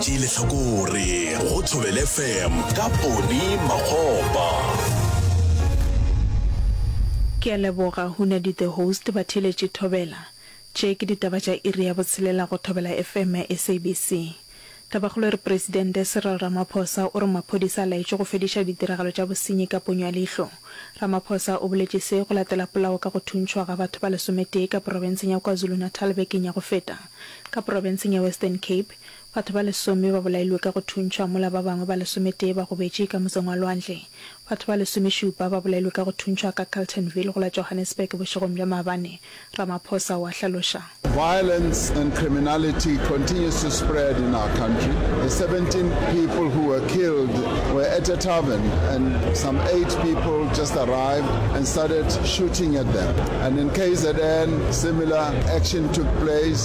Tee lehlakore go Thobele FM ka Poni Makgopa. Ke a leboga Hunadi the host Batheeletši Thobela. Tše ke ditaba tša iri ya botshelela go Thobela FM ya SABC. Tabakgolo e re Presidente Cyril Ramaphosa o re maphodisa a laetšwe go fediša ditiragalo tša bosenyi ka ponyo ya leihlo. Ramaphosa o boletše se go latela polao ka go thuntšhwa ga batho ba lesometee ka porofenseng ya KwaZulu-Natal bekeng ya go feta. Ka porofenseng ya Western Cape, Batho ba lesome ba bolailwe ka go thuntšhwa mola ba bangwe ba lesometee ba gobetše ka motseng wa lwandle. Batho ba lesomešupa ba bolailwe ka go thuntšhwa ka Carltonville go la Johannesburg bošegong bja maabane, Ramaphosa o a hlaloša. Violence and criminality continues to spread in our country. The seventeen people who were killed were at a tavern and some eight people just arrived and started shooting at them. And in KZN, similar action took place.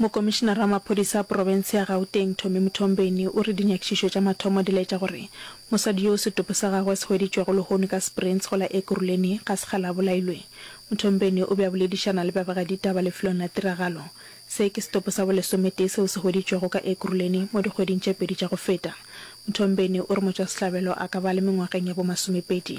Mokomišinara wa maphodisa a profense ya Gauteng, Tommy Mthombeni, o re dinyakišišo tša mathomo di laetša gore mosadi yo setopo sa gagwe se hweditšwego lehono ka Springs go la Ekurhuleni ga se kgale a bolailwe. Mthombeni o be a boledišana le babegaditaba lefelong la tiragalo. Se ke setopo sa bolesometee seo se hweditšwego ka Ekurhuleni mo dikgweding tše pedi tša go feta. Mthombeni o re motšwasehlabelo a ka ba a le mengwageng ya bomasomepedi.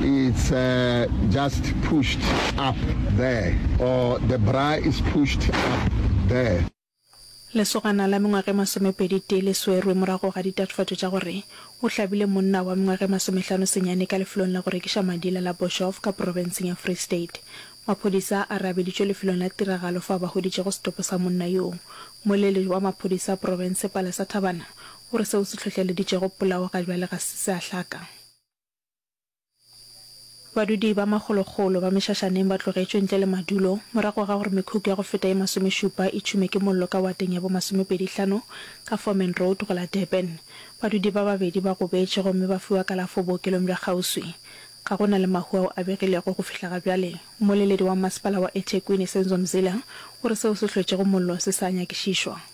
it's just pushed up there or the bra is pushed up there. Lesogana la mengwaga e masomepedi tee le swerwe morago ga ditatofatšo tša gore o hlabile monna wa mengwaga e masomehlano senyane ka lefelong la go rekiša madila la Boshof ka profenseng ya Free State. Maphodisa a re a beditšwe lefelong la tiragalo fao ba hweditšego setopo sa monna yoo. Mmoeledi wa maphodisa profense Palesa Thabana o re seo se hlohleleditšego polao ga bjale ga se se a hlaka. Badudi ba magologolo ba mešašaneng ba tlogetšwe ntle le madulo morago ga gore mekhukhu ya go feta ye masomešupa e tšhume ke mollo ka wateng ya bomasomepedihlano ka Forman Road go la Durban. Badudi ba babedi ba gobetše gomme ba fiwa kalafo bookelong bja kgauswi. Ga go na le mahu ao a begilego go fihla ga bjale. Mmoleledi wa Mmasepala wa eThekwini, Senzo Mzila, o re seo se hlwetšego mollo se sa nyakišišwa.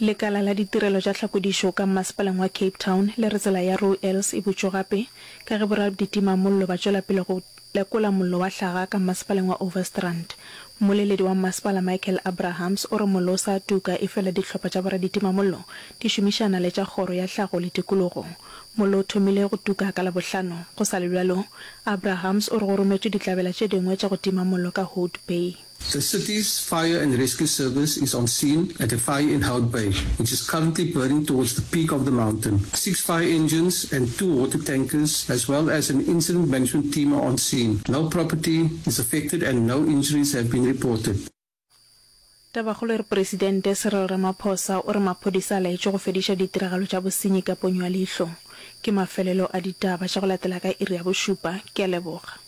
Lekala la ditirelo tša tlhakodišo ka mmasepaleng wa Cape Town le re tsela ya Roo Ellis e butšwe gape ka ge boraditimamollo ba tšwela pele go lekola mollo wa hlaga ka mmasepaleng wa Overstrand. Mmoleledi wa mmasepala Michael Abrahams o re mollo o sa tuka efela dihlopha tša boraditimamollo di šomišana le tša kgoro ya tlhago le tikologo. Mollo o thomile go tuka ka Labohlano. Go sa le bjalo, Abrahams o re go rometšwe ditlabela tše dingwe tša go tima mollo ka Hout Bay. The city's Fire and Rescue Service is on scene at a fire in Hout Bay, which is currently burning towards the peak of the mountain. Six fire engines and two water tankers as well as an incident management team are on scene. No property is affected and no injuries have been reported. Tabakgolo e re Presidente Cyril Ramaphosa o re maphodisa a laetše go fediša ditiragalo tša bosenyi ka ponyo ya leihlo. Ke mafelelo a ditaba tša go latela ka iri ya bošupa. Ke a leboga.